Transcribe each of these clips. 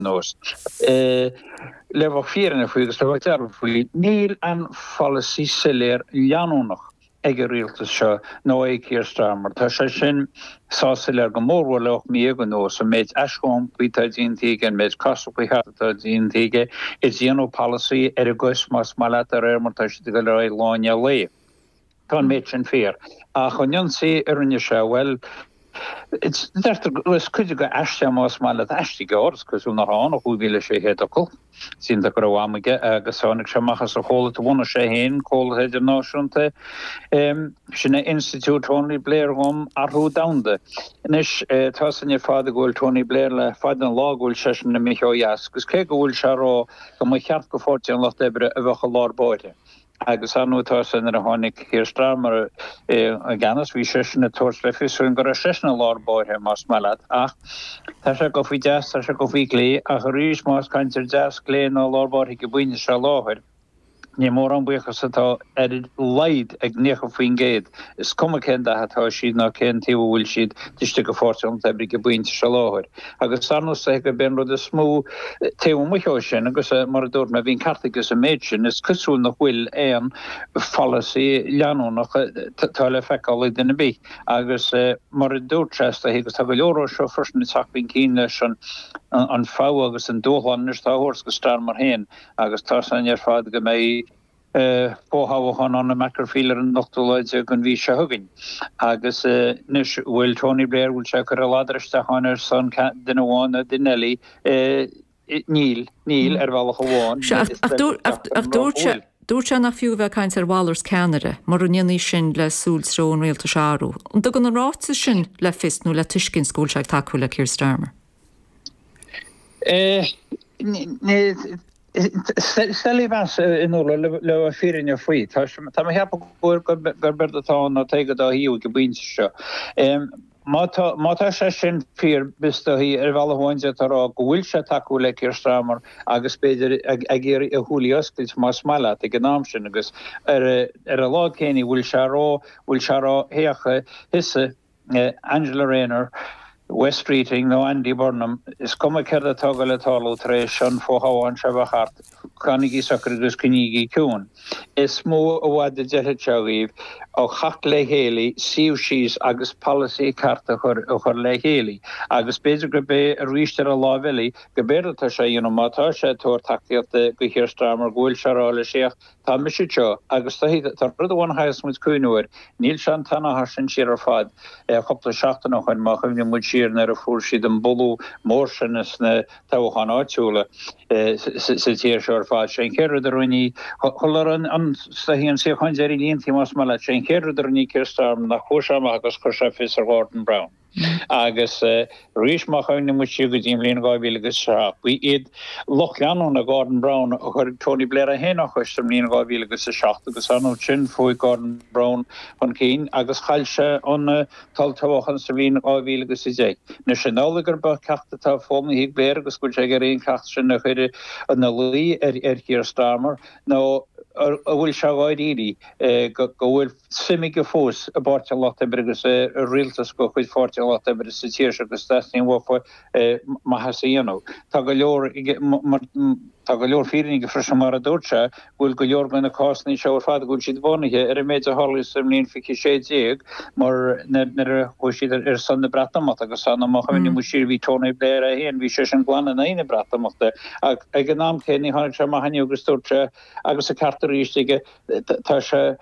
nós. Le bheith fírinneach faoi, agus le bheith dearfa faoi, níl aon pholasaí soiléir leanúnach ag an rialtas seo nó ag Keir Starmer. Tá sé sin sách soiléir go mórmhór le hocht mí dhéag anuas, an méid aischomhairc atá déanta aige, an méid casadh faoi chata atá déanta aige, ag déanamh polasaí ar a gcois más maith leat de réir mar atá siad ag dul ar aghaidh lá i ndiaidh lae. Tá an méid sin fíor. Ach an ionsaí a rinne sé, bhuel, deirtear go bhfuil cuid acu aiste más maith leat aiste gur, is cosúil nach ann ach 5,600 focal. Seans go raibh am aige agus tháinig sé amach as a chomhlacht a bhunaigh sé féin, comhlacht idirnáisiúnta, sin é Institiúid Tony Blair um Athrú Domhanda. Anois, tá a fhios againn ar fad go bhfuil Tony Blair le fada an lá go bhfuil seisean imithe ó dheas agus cé go bhfuil sé ag rá go mba cheart do Pháirtí an Lucht Oibre a bheith i lár báire, agus an uair sin nuair a tháinig Keir Starmer i gceannas bhí seisean ag tabhairt le fios dúinn go raibh seisean i lár báire, más maith leat, ach tá sé ag dul faoi dheas, tá sé ag dul faoi chlé, ach arís más caint ar deas, clé ná lár báire ag an bpointe seo i láthair, ní mórán buíochas atá ar a laghad ag 90%, is cuma cén dath atá siad ná cén taobh a bhfuil siad, taobh istigh de Pháirtí an Lucht Oibre ag an bpointe seo i láthair. Agus ar ndóigh is dóichí gurb é an rud is mó taobh amuigh ó sin, agus mar a dúirt mé, bhí an ceart aige sa méid sin, is cosúil nach bhfuil aon pholasaí leanúnach atá le feiceáil ag duine bith. Agus mar a dúirt sé, is dóichí, agus tá go leor acu seo freisin ag teacht chun cinn leis an fogha agus an dúshlán anois atá á thabhairt do Starmer féin, agus tá a fhios againn ar fad go mbeidh. fothoghchán ann i Makerfield ar an ochtú lá déag den mhí seo chugainn agus anois bhfuil Tony Blair, bhfuil sé ag cur a ladar isteach ann ar son duine amháin nó duine eile? Níl, níl, ar bhealach amháin. Sea, ach dúirt sé, dúirt sé nach fiú a bheith ag caint ar mhalairt ceannaire, mura ndéanfaí sin le súil treo an rialtais a athrú. An dtugann an ráiteas sin le fios nó le tuiscint go bhfuil sé ag tacú le Keir Starmer? Is doiligh a mheas inniu le fírinne faoi. Tá mé ag ceapadh gurb éard atá ann ná Tadhg an dá thaobh ag an bpointe seo. Má tá sé sin fíor, bhuel is dóichí ar bhealach amháin d'fhéadfá a rá go bhfuil sé ag tacú le Keir Starmer agus b'fhéidir ag iarraidh a shúilí a oscailt más maith leat ag an am sin agus ar an lá céanna bhfuil sé á rá, bhfuil sé á rá, féach, tusa. Angela Rayner, Wes Streeting, nó Andy Burnham, is cuma céard atá ag dul ag tarlú tar éis an fhothoghchán seo a bheith thart, fanaigí socair agus coinnígí ciúin. Is mó i bhfad a d'fheilfeadh sé dhaoibh, a theacht le chéile, suíomh síos agus polasaí ceart a chur le chéile. Agus b'fhéidir gurb é arís ar an láimh eile, gurb éard atá sé a dhéanamh, má tá sé ag tabhairt tacaíochta do Keir Starmer, go bhfuil sé a rá leis féach Tá, mise anseo, agus tá rud amháin a chaithfeas muid cuimhneamh air, níl sé an t-achar sin siar ar fad. cúpla seachtain ó shoin, má chuimhníonn muid siar nuair a fuair siad an bualadh mór sin sna toghcháin áitiúla sa tír seo ar fad, sin an chéad rud a rinne chuile staighí an tsíocháin deiridh líon más maith leat, sé an chéad rud a rinne Keir Starmer ná chuaigh sé amach agus chuir sé fios ar Gordon Brown. Agus arís, má chuimhníonn muid siar go dtí an bhliain 2007, ba iad lucht leanúna Gordon Brown a chuir Tony Blair é féin dá chois sa mbliain 2007 agus ar an nós sin chuaigh Gordon Brown chun cinn agus chaill sé an t-olltoghchán sa bhliain 2010. Anois, an amhlaidh gurb é ceacht atá foghlamtha ag Blair agus go bhfuil sé ag iarraidh an ceacht sin a chur ina luí ar Keir Starmer nó an bhfuil sé dáiríre go bhfuil suim aige fós i bPáirtí an Lucht Oibre agus i rialtas de chuid Pháirtí an Lucht Oibre sa tír seo agus deas ní bhfaighfeá maitheas a dhéanamh. Tá go leor aige, mar tá go leor fírinne aige freisin mar a dúirt sé go bhfuil go leor de na cásanna seo ar fad go bhfuil siad bunaithe ar an méid a tharla sa mbliain 2016 mar nuair a chuaigh siad ar son na Breatimeachta agus má chuimhníonn muid siar bhí Tony Blair é féin, bhí seisean glan in aghaidh na Breatimeachta ach ag an am céanna tháinig sé amach inniu agus dúirt sé agus an ceart arís aige tá sé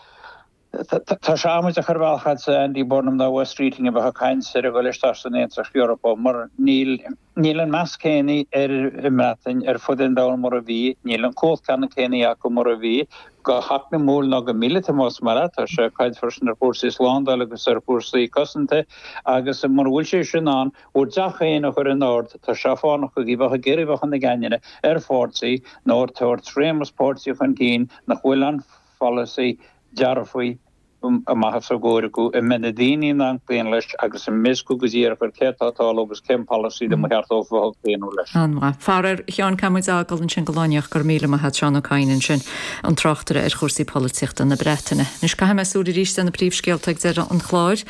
Tá sé amaideach ar bhealach, do Andy Burnham ná Wes Streeting a bheith ag caint ar a dhul isteach san Aontas Eorpach, mar níl an meas céanna ar an mBreatain ar fud an domhain mar a bhí, níl an chumhacht ceannann céanna acu mar a bhí, go heacnamúil ná go míleata más maith leat, tá sé, ag caint freisin ar chúrsaí slándála agus ar chúrsaí cosanta, agus mar a dúirt sé sin ann, bhur dteach féin a chur in ord, tá sé fánach dóibh a bheith ag iarraidh a bheith ina gceannaire ar pháirtí nó ag tabhairt réimeas páirtí chun cinn nach bhfuil an polasaí dearfa amach os a gcomhair acu, a mbeidh na daoine in ann cloí leis agus a mbeidh a fhios acu go díreach céard atá ag tarlú agus cén polasaí ba cheart dóibh a bheith ag claonadh leis. An-mhaith. Faraoir, Sheáin, caithfimid a fhágáil ansin go lá éicint. Go raibh míle maith a'd Seán Ó Cadhain ansin, an tráchtaire ar chúrsaí polaitíochta na Breataine. Anois caithfidh muid súil aríst ar na príomhscéalta ag deireadh an chláir.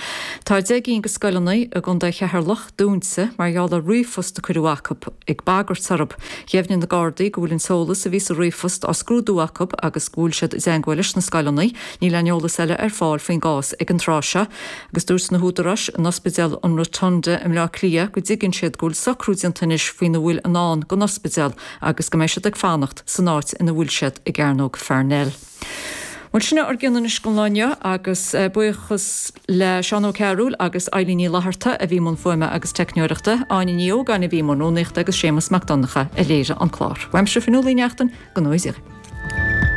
Tá deich gcinn de scoileanna i gContae Cheatharlach, dúinte mar gheall ar ríomhphost a cuireadh chucu ag bagairt orthu. Dheimhnigh na Gardaí go bhfuil an t-eolas a bhí sa ríomhphost á scrúdú acu agus go bhfuil siad i dteagmháil leis na scoileanna. Níl aon eolas eile ar fáil faoin gcás ag an tráth seo agus dúirt na húdaráis in Ospidéal an Rotunda i mBleá Cliath go dtuigeann siad go bhfuil socrú déanta anois faoina bhfuil i ndán don ospidéal agus go mbeidh siad ag fanacht san áit ina bhfuil siad i gCearnóg Pharnell. Bhuel, sin é ár gcuid anois don lá inniu agus buíochas le Seán Ó Cearúil agus Eilín Ní Fhlaithearta a bhí i mbun fuaime agus teicneoireachta, Áine Ní Ógáin a bhí i mbun rúnaíochta agus Séamas Mac Donncha a léirigh an clár. Uaimse, Fionnuala Uí Neachtain, go n-éirí libh.